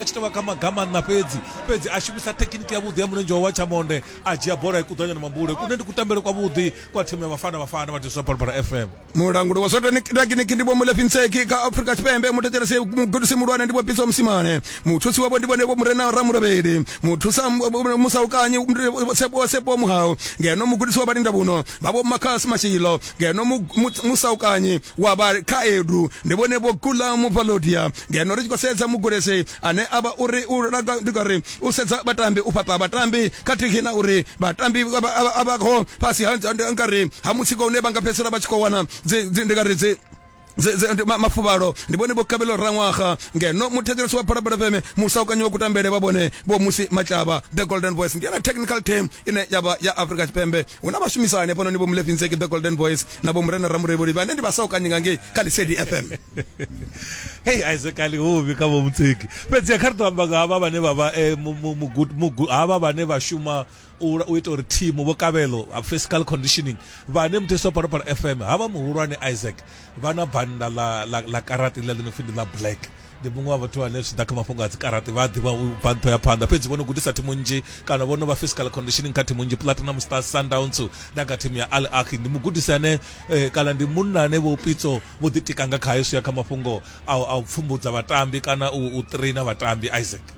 a tshi tovha kha magamanna fhedzi fhedzi a shumisa thekiniki ya vhuḓi ya mulenzhe wa wachamonde a dzhia bola ikuḓanya na mambule kune ndi kutambele kwa vhuḓi kwa thimu ya vhafana vhafana vha tiswa balbala fm mulanguli wa sotekiniki ndi vhomulefhi ntseki kha afrika tshipembe muthetshelesi mugudisi muhulwane ndi vhopitsa musimane muthusi wavho ndi vhone vho murena ramurabeli muthusa musaukanyi sepo muhau ngeno mugudisi wa vhalinda vhuno vha vho makhasi mashilo ngeno musaukanyi wa vha khaedu ndi vhone vho kula muvalodia ngeno ri tshi khou sedza mugudisi ane a vha uri u langa ndi ngari u sedza vhatambi u fhaṱa vhatambi khathihi na uri vhatambi a vha kho fhasi ha ngari ha mutsiko une vha nga fhedzisela vha tshi khou wana ndi ngari dzi mafuvhalo ndi vhone vho kabelo raṅwaga ngeno muthetshelesi wa phalaphala fm musaukanyi wa kutambele vha vhone vho musi matlava the golden voice ndi yone technical team ine ya vha ya afrika tshipembe hu na vhashumisani hafhanoni vho mulefinzeki the golden voice na vho murena ramurevholi vhane ndi vhasaukanyi nga ngei kha lisedi fm hei aisekali huvhi kha vho mutseki fhedzi kha ri to amba nga havha vhane vha vha eh, havha vhane vha shuma u ita uri thimu vho kavhelo ha physical conditioning vhane muthiso wa phalophala fm havha muhulwane isaac vha na bannda ḽa karati ḽa ḽi no pfi ndi ḽa black ndi muṅwe wa vhathu vhane zwi ḓa kha mafhungo a dzikarati vha a ḓivha u bva nṱho ya phanḓa fhedzi vho no gudisa thimu nnzhi kana vho no vha physical conditioning kha thimu nnzhi platinum stars sundowns na kha thimu ya al aki ndi mugudisi ane eh, kana ndi munna ane vho pitso vho ḓitika nga khayo zwi ya kha mafhungo a u pfumbudza vhatambi kana u traina vhatambi isaac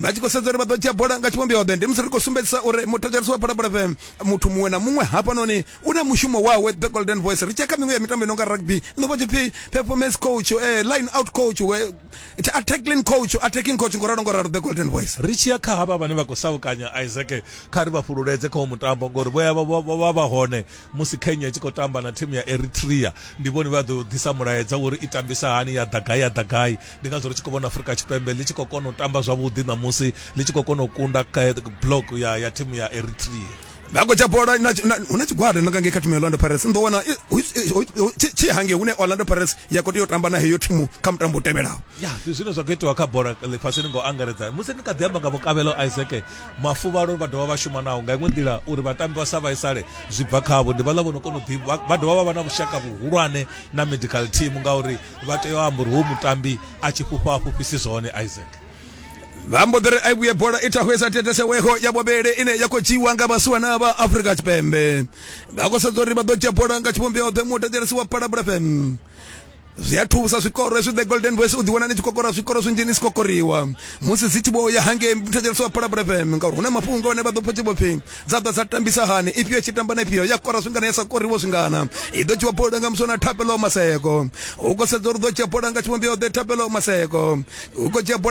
vha tshi khou sedza uri vha ḓo dzhia bola nga tshivhumbeo ḓe ndi musi ri khou sumbedzisa uri muthetshelesi wa phalaphala fm muthu muṅwe na muṅwe hafhanoni u na mushumo wawe the golden voice ri tshia kha miṅwe ya mitambo i nonga rugby ndo vha tshipfi performance coach eh, line out coach we attacking coach attacking coach ngo ralo ngo ralo the golden voice ri tshiya kha havha vhane vha khou saukanya isaac kha ri vha fhululedze kha mutambo ngori vho ya vha- vha vha- vha hone musi kenya i tshi khou tamba na thimu ya eritrea ndi vhone vha ḓo ḓisa mulaedza uri i tambisa hani ya ḓa gai ya ḓa gai ndi ngazwo ri tshi khou vhona afurika tshipembe ḽi tshi khou kona u tamba zwavhuḓi ṋamusi ḽi tshi khou kona u kunda block ya ya thimu ya eritrea nako tsha bola hu na tshigwada na kange kha thimu ya orlando pirates ndo wana tshi hange hune orlando pirates ya khou tea u tamba na heyo thimu kha mutambo u tevhelaho ya ndi zwine zwa khou itiwa kha bola ḽifhasini ngo angaredza musi ni kha ḓi amba nga vhukavhelo isaac mafuvhalo vha dovha vha shuma naho nga iṅwe nḓila uri vhatambi vha sa vhaisale zwi bva khavho ndi vhaḽa vho no kona u ḓi vha dovha vha vha na vhushaka vhuhulwane na medical team ngauri vha tea u amba uri wo mutambi a tshi fhufha a fhufhisi zwone isaac vha mbo ḓi ri a vhuye bola i thahwesa teteseweho ya vhuvhili ine ya khou dzhiiwa nga vhasiwana vha afrika tshipembe vha khou sedza uri vha ḓo dzhia bola nga tshivhumbeo ḓe mutatelesi wa palabula fm zwi a thusa zwikoro hezwi the golden voice u ḓiwana ni tshi kokora zwikoro zwinzhi ni si kokoriwa musi dzi tshi vho ya hangei muthetsheliso wa phalabula fm ngauri hu na mafhungo ane vha ḓo pfha tshi vho pfhi dza ḓa dza tambisa hani ifhio tshi tamba na ifhio ya kora zwingana ya sa koriwo zwingana i ḓo dzhiwa bola nga musona thapelo maseko u khou sedza uri ḓo dzhia bola nga tshivhumbeo ḓe thapelo maseko u khou dzhia bola